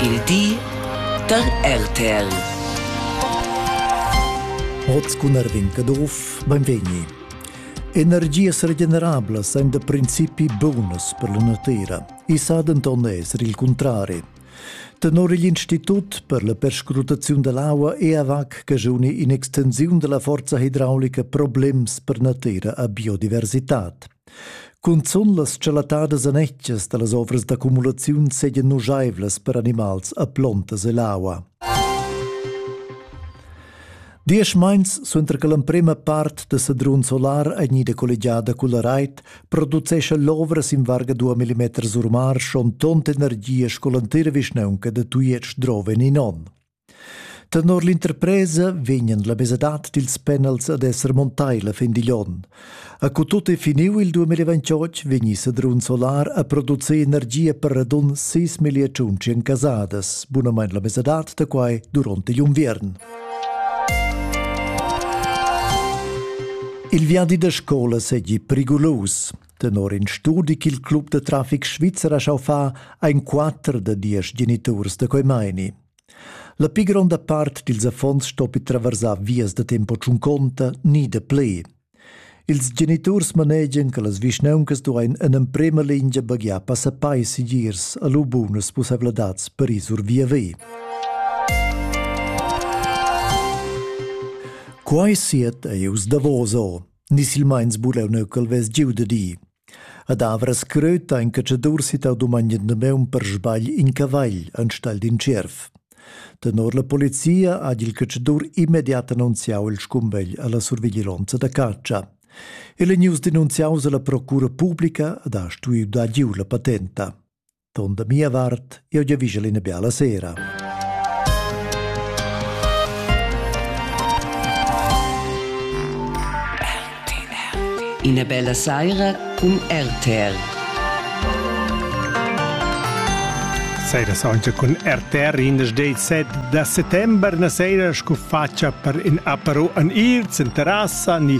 Il di da RTL. Hoz cun Erwin Caduff, benvegni. Energias regenerablas ein da principi bunas per la natira. I sa denton esser il contrari. Tenor igl Institut per la perscrutaziun dell'aua EAVAC cagiuni in extensiun della forza hidraulica problems per natira a biodiversitad. Cunzun las schelatadas anetgas da las ovras d'accumulaziun seigien nuscheivlas per animals a plontas ell'aua. Diesch meins suenter che l'emprema part da Sedrun Solar ei gnida collegiada culla reit, producescha l'ovra sin varga 2 mm sur mar schon tont energia sco l'entira vischnaunca da Tujetsch drova in on. Tenor l'interpresa vegnan la mesadad dils penals ad esser montai la fin digl onn. A cu tut è finiu il 2028 vegni Sedrun Solar a produceir energia per radun 6 milliards casadas, bunamain la mesadad da quai durante l'inviern. Il viadi da scola segi prigulus. Tenor in studi ch'il club da traffic svizzer ha schau fa ein quatter da diesch geniturs da quei meini. La pli gronda part dils affons stoppi traversar vias da tempo tschunconta ni da plaid. Ils geniturs manegian che las vischnauncas duein en emprema lingia baghiar passappai segirs a lu bunas pusseivladads per ir sur via ve. Quai siet ei us davoso, ni silmeins buleu neu ch'el vess giu da di. Ad Avras Gröta ha in catschadur sittau dumogn in damaun per sbagl in cavagl enstagl d'in tschierv. Tenor la polizia ha il catschadur immediat annunziau il scumbegl alla surviglionza da catscha. El è news denunziaus alla procura publica ed ha stuiu dar giu la patenta. Ton da mia vart, eu giavigel ina biala sera. Ina bella saira cun RTR. Seira saunza cun RTR in das 17 da settember na seira scu facia per in apero an ir, in terrassa ni